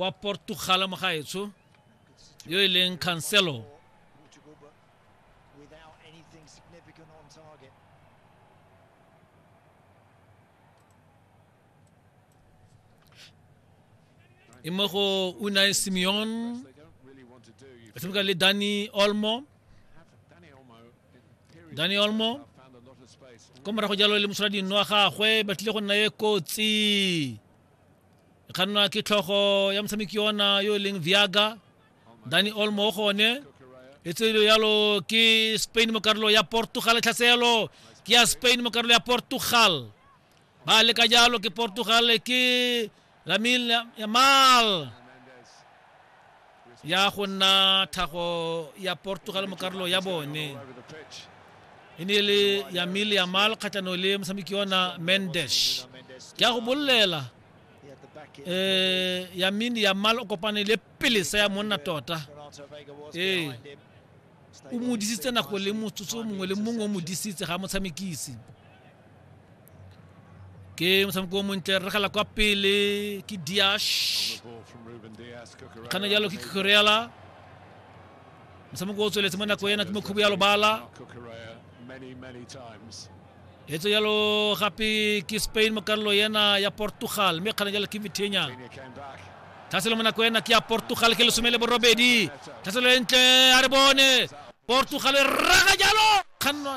wa portugala mogaetsho yo e leng cancelo e mo go unai simeon a tshameka le dani olmo dani olmo ko morago jalo le mosola dinno wa gagwe ba tlile go nna e kotsi e kgannwa ke tlhogo ya motshameki ona yo e leng viaga dani olmo o gone e tselo yalo ke spain mo karolo ya portugal tlhaselo ke ya spain mo karolo ya portugal ba leka jalo ke portugal ke ramil yamal ya go nna thago ya portugal mo karolo ya bone e ne le ya mile ya mal kgatlhano le motshameki yona mendes ke ya go bolelela um eh, ya mine ya mal o kopane le pelesa ya monna tota ee o mo disitse nako le motsotso mongwe le mongwe o mo disitse ga motshamekisi ke motshameko o montle re gala kwa pele ke diash kana jalo ke koreala motshameko o tsweletse mo nako ena ke mokhubo ya lobala etso jalo gape ke spain mo karolo ena ya portugal mme kgana jalo ke vitenya thaselo mo nako ena ke ya portugal ke lesome le borobedi thaselo e ntle a re bone portugal e raga jalo kgannwa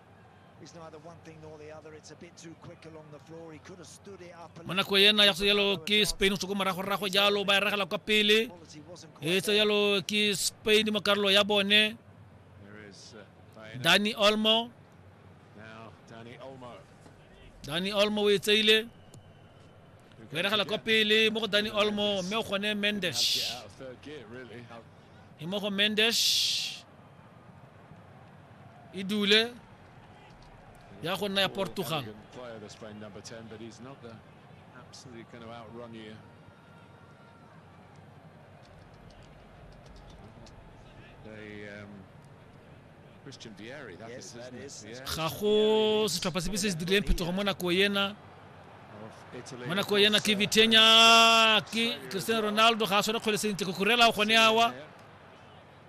Bona go ena ya jalo ke Spain go morago rago jalo ba e regela kwa pele e tsa jalo ke Spain mo karolo ya bone Dani Olmo Dani Olmo o e tseile o e regela kwa pele mo go Dani Olmo mme o gone Mendes e mo go Mendes e dule ya go nna ya portugal ga go setlhopha sepe se se dirileng phetogo mo nako ena mo nako ena ke vitenya ke cristiano ronaldo ga a tshwane kgwele sentle go kurela gone awa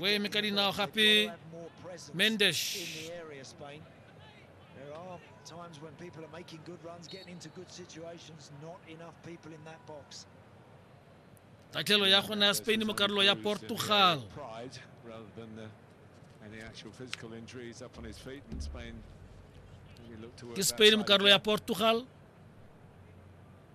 O eme ka dinao gape Mendes. There are times when people are making good runs, getting into good situations, not enough people in that box. tatlhelo ya gona ya spain mo karolo ya portugal ke spain mo karolo ya portugal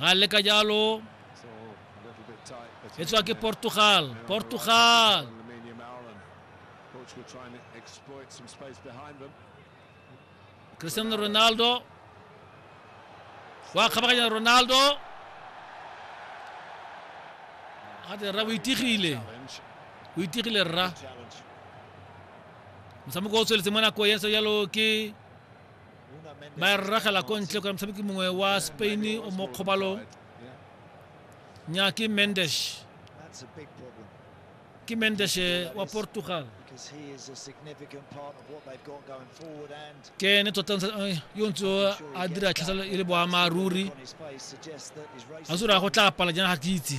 ga le ka jalo e tswa ke portugal portugal cristiano ronaldo wa kgabaganya ronaldo gate rra o itigile o itigile rra motshameko o tsweletse mo nako ya ntse jalo ke ba e rragela ko ntle kore motshameki mongwe wa spain o mo kgobalong nya ke mendes ke mendes eh, wa portugal ke ne tota eh, yo ntse a dira tlhaselo e le boammaaruri a sore ya go tla pala jana ga ke itse